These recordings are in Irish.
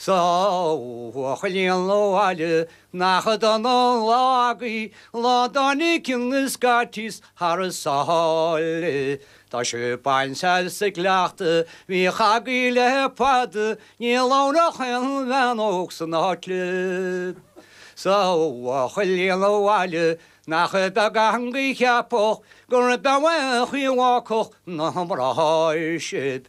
'S a bhuachaillí an bhaile nach dona an lá agaibh lá dá n-íocann na scaitís thar sáile. Tá sibh bainte as an gcleachtadh a bhíodh agaibh le fada, níl ann ach aon bhean óg san áit libh. 'S a bhuachaillí an bhaile nach beag a theanga a cheapfadh gur beag a chian a bhacfadh na mná sibh.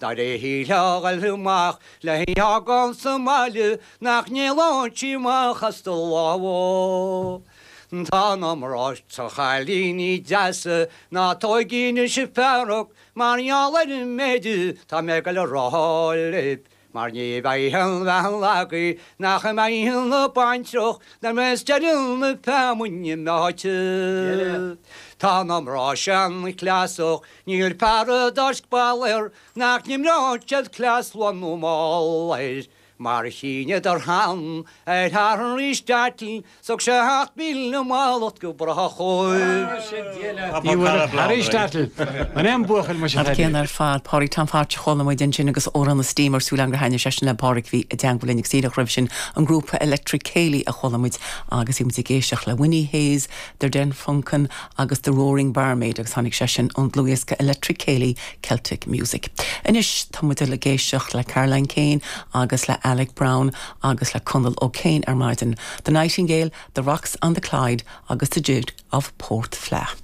Dar a shíle a dhul amach le híogail sa mbaile nach n-éalóidís amach as do lámha. Tá na mná seo chailíní deasa ná tóigí anois fearg mar gheall ar an méid atá mé ag dul a rá libh, mar ní bheidh aon bhean agaibh nach mbeidh ina baintreach nuair a bheas deireadh na feamainne meáite. Tá na mná seanchleasach Níl paradaisc Balor nach n-imreoidh siad cleas luath nó mall air, mar a rinneadar cheana ar Aristotle thug sé a sheacht míle mallacht go brách dhóibh. Ní bhfuair Aristotle an M buachaill muis, a An Phaddy. céanna ar fad. Pádraig Tom Photch a chuala muid ansin agus Amhrán an Steamer súil againn gur thaitnigh sé sin le Pádraig a bhí i dteangmháil linn ag Saoileach roimhe sin an grúpa Electric Céilí a chuala muid agus bhí muid ag éisteacht le Winnie Hayes, Der Den Funken agus The Roaring Barmaid agus tháinig sé sin ón dlúthdhiosca Electric Ceilí, Celtic Music. Anois tá muid ag goil ag éisteacht le Caroline Keane agus le Alec Brown agus le Conal O'Kane ar maidin, The Nightingale, The Rocks on the Clyde agus The Jig of Port Fleadh.